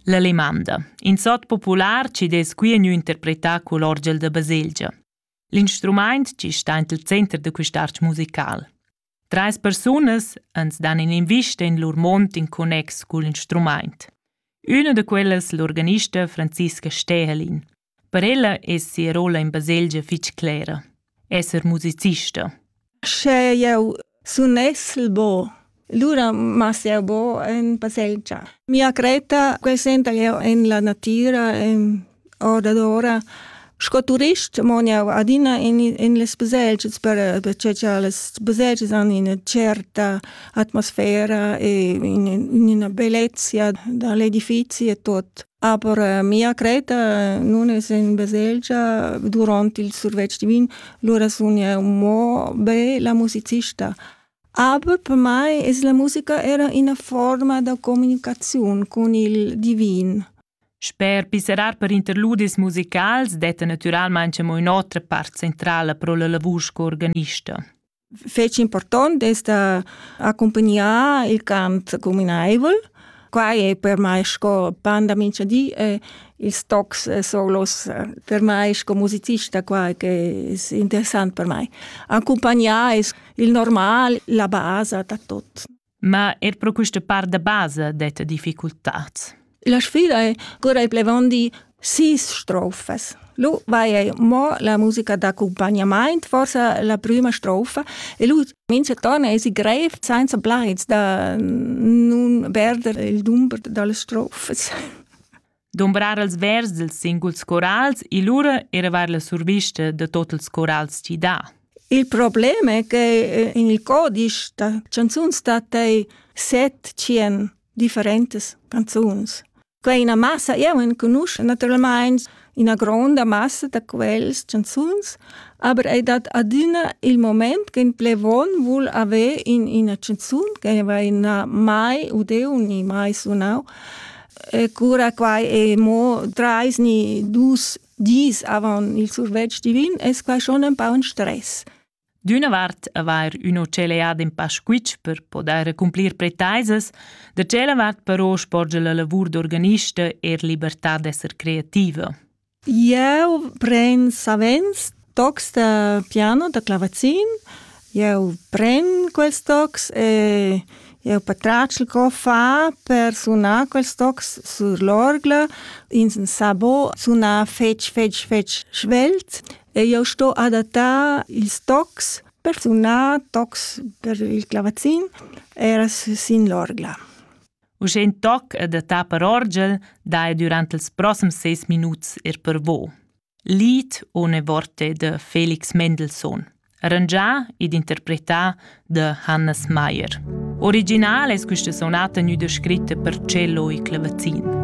L'alemanda, in sot popular chi dess qui gnü interpretà cul orgel da baselgia. L'instrumaint chi sta int il center da quist'arch musical. Trais persunas ans dan in'invista in lur mond in connex cul instrumaint. Üna da quellas l'organista Franziska Stehelin. Per ella es sia rolla in baselgia fich clera, esser musicista. Sche jau sunessel bo, lura mas jau bo en baselgia. Mia cretta consenta jau en la natira, en ordadora. Sco turist mon jau adina in, in les baselgias per, perché che les baselgias hanno una certa atmosfera e in, una bellezza dall'edifici e tot. Aber äh, mia creta nun es in baselgia durant il survetsch divin, lura sun eu mo be la musicista. Aber per mai es la musica era ina forma da comunicaziun con il divin. Sper piserar per interludis musicals detta naturalmente mo un'otra part centrala pro la lavur sco organista. fetg important d'ester accompagnar il camp communaivel. Quai è per mai sco pan da mincha di e ils tocs eh, solos eh, per mai sco musicista qua che è interessant per mai. Accompagnare è il normal, la base da tot. Ma er pro quista part da basa detta difficultats. La sfida è cura i plevandi sis strofes. Lu vai ei mo la musica d'accompagnament, forse la prima strofa, e lu mince torna esi grev senza plaids da nun perder il dumber delle strofes. dumbrar els vers dils singuls corals e lura eravar la survista da tot ils corals ti dà. Il problem è che eh, in il codice da canzuns stat ei set cien differentes canzuns. Quei ina massa, eu enconusch naturalmente ina gronda massa da quels canzuns, aber ei dat adina il moment che in plevon vul avere in ina canzun che va in mai udeu ni mai sunau Cura quai è mo trais ni dus dis avant il survetsch divin, è quai schon un po un stress. D'üna vart avair üna celeada in pa squitsch per podair accumplir pretaisas, da tschella vart però sporgia la lavur d'organista er libertà d'esser creativa. Eu pren savens tocs da piano, da clavazin. Eu pren quels tocs e eu patratgel co far per sunar quels tocs sur l'orgla. In sabo suna fetg, fetg, fetg svelt e eu sto adattar ils tocs per sunar tocs per il clavazin era sin l'orgla. Uschè in toc e da ta per orgel dai durant ils proxims seis minuts er per vo. Lied Ohne Worte de Felix Mendelssohn, arrangià ed interpretà da Hannes Meyer. Original es questa sonata gnüda scritta per cello e clavazin.